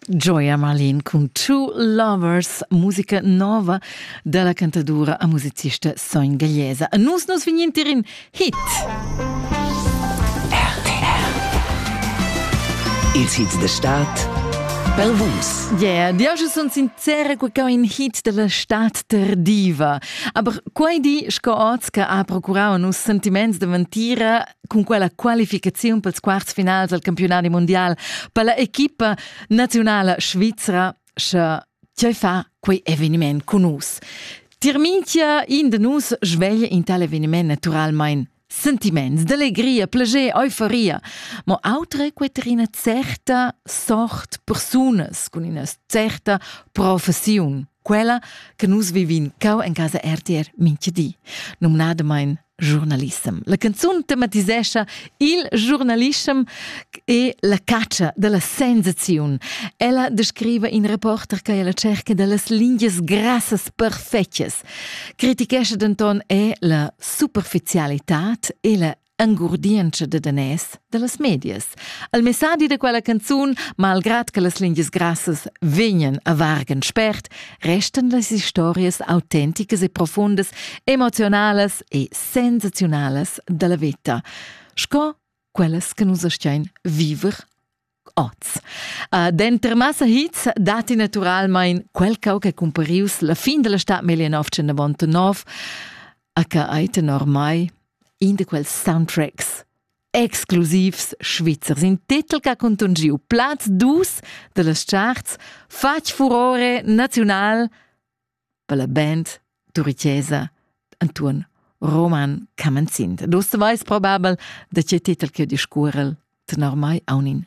Gioia Marlin cun Two Lovers, musica nova da la cantadura a musicista Soin Gagliesa. A nus nos vignintir in hit! Ils hits de Stadt pel vus. Yeah, io schon son sincera che è un hit della stat tardiva. Aber quei di, sco oz che ha procurau a nus sentiments de ventira, cun quella qualificaziun pels quarts finals al campiunadi mundial per la equipa nazionala svizra sche tgei fa quei eveniment con nus. Tier minchia in de nus sveglia in tal eveniment naturalmein sentiments d'allegria, plager, euforia, ma autre quet ina certa sort persunas con ina certa professiun, quella che nus vivin cau en casa RTR minchia di, nomnadamain Giornalissem. La canzun tematisescha il giornalissem e la caccia dalla sensaziun. Ella descriva in reporter che è alla cerca dallas lingias grassas perfettas. Critichescha denton è la superficialità e la angurdientscha da danès dallas medias. Al messadi da quella canzun, malgrad che las lingias grassas vegnan a vargan spert, restan las historias autenticas e profundas, emocionalas e sensaziunalas dalla veta, sco quellas che nus astgein viver oz. Uh, denter massa hits datti naturalmein quel cau che cumparius la fin della stad 1909, HA tenor mai, in de quels soundtracks exclusivs svizzers. In titel che ha contungiu plaz dus dellas charts fatg furore naziunal per la band turicesa Antoine Roman Camenzin. Dus veis probabel da che titel che discuorel tenor mai aunin